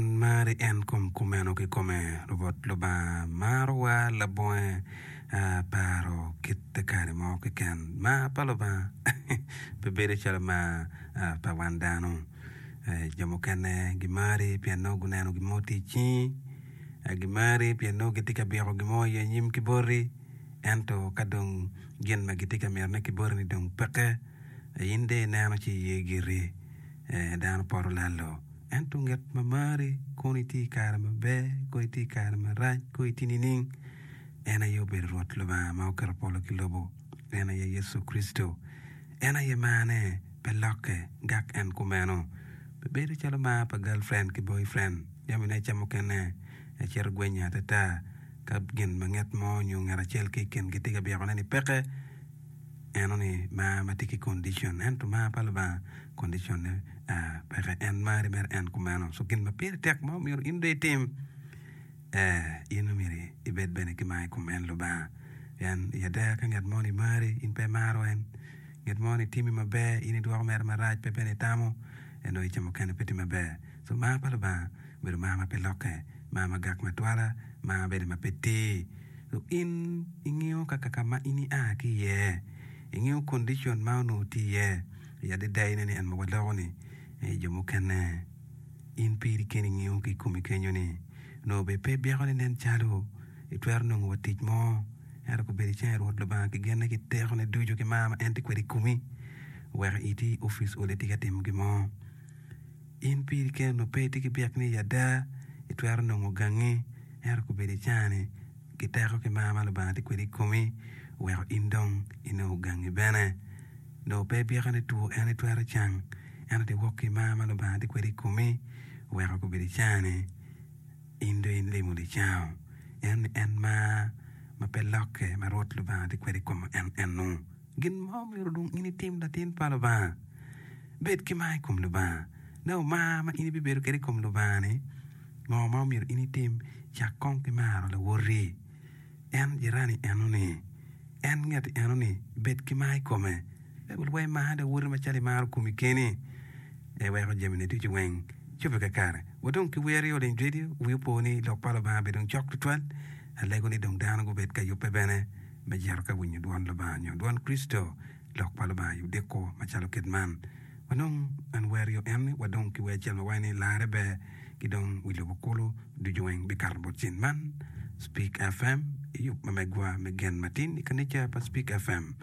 Wan mari en kom kumeno kikome. Rwot Lubanga marowa labonge a paro kite kare mo keken. Mar pa Lubanga pe bedo calo mar a pa wan dano. A jo mukene gimari pien nongo guneno gin mo tye i cingi. A gimari pien nongo gitye ka byeko gin mo i anyim ki boti. Ento ka dong gin ma gitye ka mitone ki botini dong peke, a in de ineno ci iye giri. Ee, dano poto lalo. Ento ngat ma mari, kono itye i kare maber, kono itye i kare marac, kono itye nining? En aye obedo Rwot Lubanga ma oketo polo ki lobo. En aye Yecu Kricito. En aye marne pe lokke, gak en kumeno. Pe bedo calo mar pa galfrend ki boyfrend, jamine ica mukene, ecito gwenyo atata ka gin ma nget mo nyo ngat acel ki i kingi tye ka byekone ni peke. Eno ni mar ma tye ki condition ento mar pa Lubanga condition ne peke en mari mere en kumeno so gin ma pire tek ma omyero in dong itim eh in omyero ibed bene ki mar i kom en Lubanga pien i ada ka ngat moni mari in pe imaro en ngat moni timi maber in idwoko mere marac pe bene itamo en dong ica mukene pe tye maber. Pur mar pa Lubanga obedo mar ma pe lokke, mar ma gak matwala, mar ma bene ma pe tir. Lu in ingiyo kaka ka ma in ia ki iye? Ingiyo kondicon ma onongo tye iye? I adada ine ni en ma waloko-ni aye jo mukene. In piri keni ingiyo ki i komi kenyo ni, Nongo bene pe byekoni nen calo itwero nongo wa tic mo, ento ku bed icenge Rwot Lubanga ki genne ki tekone ducu ki mar ma en tye kwede i komi, wek iti i opic oli tika timo gin mo. In piri keni onongo pe itye ki byek ni ada itwero nongo gangi, ento kobedo icani ki teko ki mar ma Lubanga tye kwede i komi oweko in dong inongo gangi bene. Dong pe ibyeko ni two en itwero cang, ento dong wok ki i mar ma Lubanga tye kwede i komi oweko kobedo icani in dong ilimo licango, ento ni en mar ma pe lokke ma Rwot Lubanga tye kwede i koma en enu. Gin ma omyero dong in itim, latin pa Lubanga, bed ki mar i kom Lubanga. Nongo mar ma in ibibedo kwede i kom Lubanga-ni, ngo ma omyero in itim? Cak kong ki maro lawoti, en jirani eno-ni, en ngeti eno-ni. Bed ki mar i kome. Baibul waco, Mar lawoti macalo imaro komi keni. Eweko jamine ducu weng cobbe kakare. Wa dong ki wer yo ling redio. Wi opo ni Lok pa Lubanga bene dong cok tutwal. Alego ni dong dano gubed ka yubbe bene. me jito ka winyo dwon Lubanga nyo dwon Kricito, lok pa Lubanga i odiko macalo kit man. Wanong an werio en ni wadong ki wer acel ma waco ni Larre Ber ki dong wi lobo kulu ducu weng bikato bot cen man. Spik FM, I yub ma megwa me gen matin i kanica pa Spik FM,